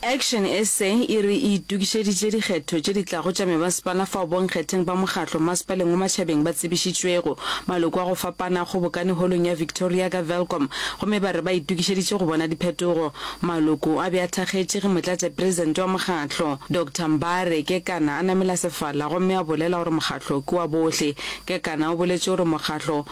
Action sa e re e itokišeditše dikgetho tše di tlago tša mebasepala fao bonkgetheng ba mokgatlo mmasepaleng wa matšhabeng ba tsebišitšwego. Maloko a go fapana a kgobokane Holong ya Victoria ka Welkom gomme ba re ba itokišeditše go bona diphetogo. Maloko a be a thakgetše ge Motlatšaperesente wa mokgatlo, Doctor Mbare Kekana a namela sefala gomme a bolela gore mokgatlo ke wa bohle. Kekana o boletše gore mokgatlo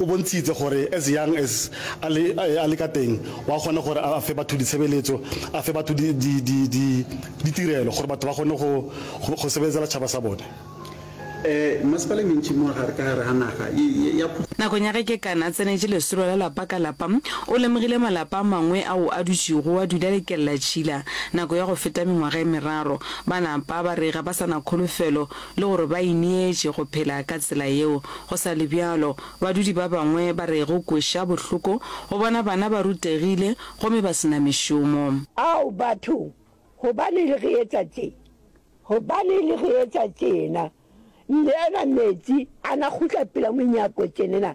O bontšhitše gore as young as a le, a le ka teng, wa kgona gore a fe batho ditshebeletso, a fe batho di, di, di, di, ditirelo gore batho ba kgone go, go, go sebeletsela tšhaba sa bone. E, masepala e mentši mo gare ka gare ga naga e, e, ya phušo. Nakong ya ge Kekana a tsenetše lesolo la lapa ka lapa, o lemogile malapa a mangwe ao a dutšego a dula le kellatšhila nako ya go feta mengwaga e meraro. Ba napa ba re ga ba sa na kholofelo le gore ba ineetše go phela ka tsela yeo. Go sa le bjalo, badudi ba bangwe ba re go kweša bohloko go bona bana ba rutegile gomme ba se na mešomo. Ao batho, gobaneng le re etša tše? Gobaneng le re etša tšena? Nyeena meetse a na kgutla pela monyako tšenena,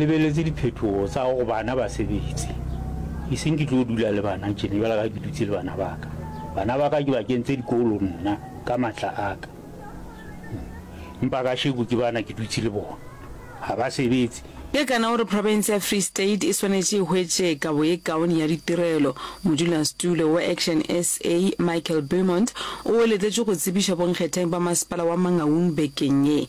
Lebeletse diphetogo tsa go bana ba sebetse. E seng ke tlo dula le bana tjena bjalo ka ke dutse le bana ba ka. Bana ba ka ke ba kentse dikolo nna ka matla a ka. Empa kasheko ke bana ke dutse le bona. Ha ba sebetse. Kekana o re profense ya Free State e swanetše e hwetše kabo ye kaone ya ditirelo. Modulasetulo wa Action sa, Michael Beaumont o eletletšwe go tsebiša bonkgetheng ba masepala wa Mangaung bekeng ye.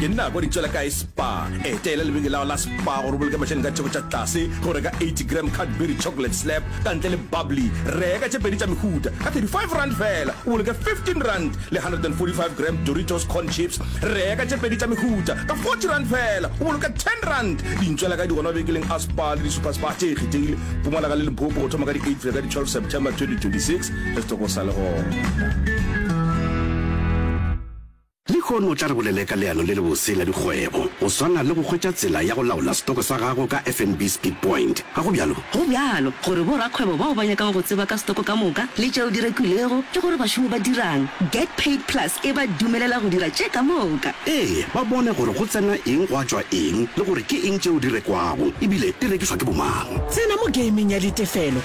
ke nna kwa ditswela kae spa eteela lebeke lao la spa gore boloke mašani ka theko tša tlase go reka 80 gram cadbury chocolate slap ka ntle le bubbly reka tše pedi tša mehuta ka 35 rand fela o boloke 15 rand le 145 gram doritos corn chips reka tše pedi tša mehuta ka 40 rand fela o boloke 10 rand dintswela ka di gona bekeleng a spa le di-super spa tše e kgethegile pumalaga le limpopo go thoma ka di-8 fela ka di-12 september 2026 re tlo go sa le gona. Lehono o tla re bolele ka leano le lebose la dikgwebo, go swana le go hwetša tsela ya go laola setoko sa gago ka FNB Speedpoint, ga go bjalo? Go bjalo, gore borakgwebo bao ba nyakago go tseba ka setoko ka moka le tšeo di rekilwego le gore bašomi ba dirang, Get Paid Plus e ba dumelela go dira tše ka moka. Ee, ba bone gore go tsena eng gwa tšwa eng le gore ke eng tšeo di rekwago e bile di rekišwa ke bomang. Tsena mo gaming ya ditefelo